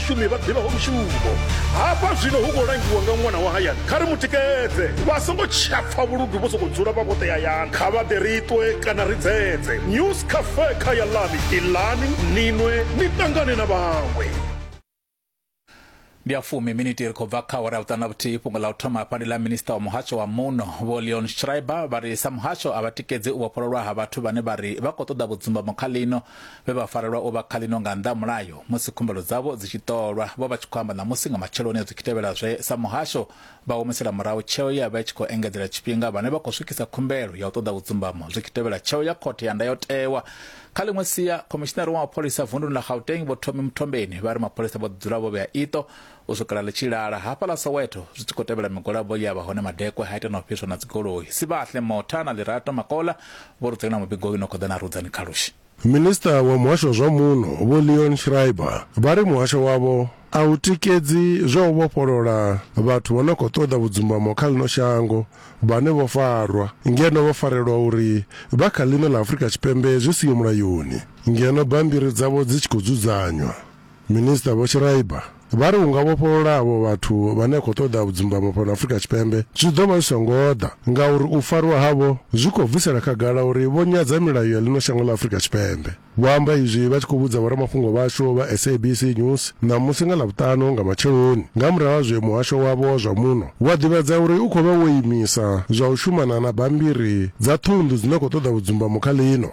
vhashumi vha ḓivhaho mushumo hafha zwino hu khou langiwa nga ṅwana wa hayani kha ri mu tikedze vha songo tshapfa vhuludu vho sokou dzula vha vhoṱe hayani kha vha ḓe ri ṱwe kana ri dzedze news cafe kha ya lani ilani ninwe ni ṱangane na vhaṅwe ndi a fumi miniti ri khou bva kha awara ya vhuṱanu na vhuthihi fhungo ḽa u thoma hafha ndi ḽa minista wa muhasho wa muno vho leon schreiber vha ri sa muhasho a vha tikedzi u vhofhololwa ha vhathu vhane vha ri vha khou ṱoḓa vhudzumbamo kha ḽino vhe vha farelwa u vha kha ḽino nga nnḓa ha mulayo musi khumbelo dzavho dzi tshi ṱolwa vho vha tshi khou amba ṋamusi nga matsheloni a zwi tshi tevhela zwe sa muhasho vha humisela murahu tsheo ye ya vha i tshi khou engedzela tshifhinga vhane vha khou swikisa khumbelo ya u ṱoḓa vhudzumbamo zwi tshi tevhela tsheo ya khothe ya ndayotewa kha ḽiṅwe sia khomishinari wa mapholisa vunduni ḽa Gauteng vho Thomi Muthombeni vha ri mapholisa vho ḓi dzula vho vhea iṱo U swikela ḽi tshi lala, hafhaḽa Soweto, zwi tshi khou tevhela migwalabo ye ya vha hone madekwe ha ita na u fhiswa na dzigoloi. Sibahle Motha na Lirato Makola vho ri dzulela mubigoni u no khou ḓa na Rudzani Khalushi. Minisiṱa wa Muhasho wa zwa Muno Vho Leon Schreiber vha ri muhasho wavho a u tikedzi zwa u vhofholola vhathu vho no khou ṱoḓa vhudzumbamo kha ḽino shango vhane vho farwa ngeno vho farelwa uri vha kha ḽino ḽa Afrika Tshipembe zwi siho mulayoni ngeno bammbiri dzavho dzi tshi khou dzudzanywa. Minisiṱa Vho Schreiber vha ri u nga vhofholola avho vhathu vhane a khou ṱoḓa vhudzumbamo fhano Afrika Tshipembe zwi ḓo vha zwi songo ḓa ngauri u farwa havho zwi khou bvisela khagala uri vho nyadza milayo ya ḽino shango ḽa Afrika Tshipembe. Vho amba izwi vha tshi khou vhudza vhoramafhungo vhashu vha SABC News ṋamusi nga Ḽavhuṱanu nga matsheloni nga murahu ha zwe muhasho wavho wa zwa muno wa ḓivhadza uri u khou vha wo imisa zwa u shumana na bammbiri dza ṱhunḓu dzi no khou ṱoḓa vhudzumbamo kha ḽino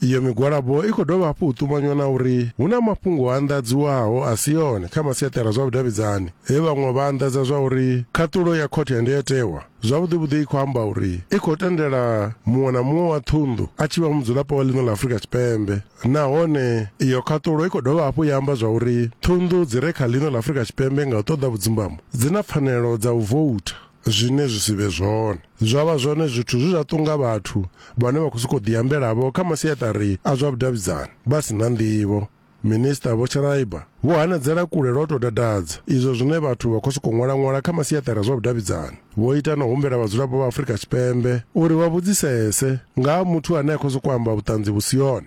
Iyo migwalabo i khou dovha hafhu u ṱumanywa na uri hu na mafhungo a anḓadziwaho a si one kha masiaṱara zwa vhudavhidzani he vhaṅwe vha anḓadza zwa uri khaṱulo ya khothe ya ndayotewa zwavhuḓivhuḓi i khou amba uri i khou tendela muṅwe na muṅwe wa ṱhunḓu a tshi vha mudzulapo wa ḽino ḽa Afurika Tshipembe nahone iyo khaṱulo i khou dovha hafhu ya amba zwa uri ṱhunḓu dzi re kha ḽino ḽa Afurika Tshipembe nga u ṱoḓa vhudzumbamo dzi na pfanelo dza u voutha zwine zwi si vhe zwone zwa vha zwone zwithu zwi zwa ṱunga vhathu vhane vha khou sokou ḓiambelavho kha masiaṱari a zwa vhudavhidzani vha si na nḓivho minista vho sharaiba vho hanedzela kule lwa u tou dadadza izwo zwine vhathu vha khou sokou ṅwala-ṅwala kha masiaṱari a zwa vhudavhidzani vho ita na u humbela vhadzulapo vha afurika tshipembe uri vha vhudzisese nga ha muthu ane a khou sokou amba vhuṱanzi vhu si yone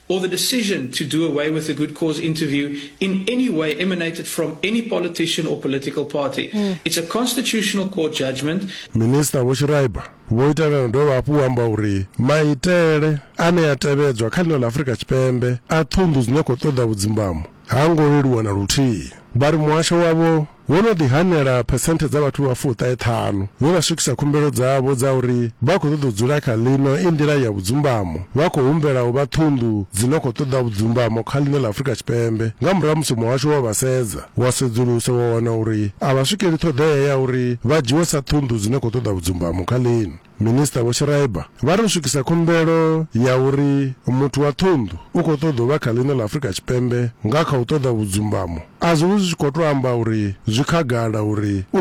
or the decision to do away with the good cause interview in any way emanated from any politician or political party. Mm. It's a constitutional court judgment. Minister Vho Shiraiba vho ita na dovha hafhu u amba uri maitele ane a tevhedzwa kha ḽino ḽa Afrika Tshipembe a ṱhunḓu dzine khou ṱoḓa vhudzimbamo ha ngo leluwa na luthihi. Vha ri muhasho wavho Ho no ḓi hanela phesenthe dza vhathu vha fuṱahe ṱhanu vhe vha swikisa khumbelo dzavho dza uri vha khou ṱoḓa u dzula kha ḽino i nḓila ya vhudzumbamo vha khou humbela u vha ṱhunḓu dzi no khou ṱoḓa vhudzumbamo kha ḽino ḽa Afrika Tshipembe nga murahu ha musi muhasho wo vha sedza wa sedzulusa wa wana uri a vha swikeli ṱhoḓea ya uri vha dzhiwe sa ṱhunḓu dzi no khou ṱoḓa vhudzumbamo kha ḽino Minisiṱa Vho Schreiber vha ri u swikisa khumbelo ya uri muthu wa ṱhunḓu u khou ṱoḓa u vha kha ḽino ḽa Afrika Tshipembe nga kha u ṱoḓa vhudzumbamo a zwi vhi zwi tshi khou tou amba uri zwi khagala uri u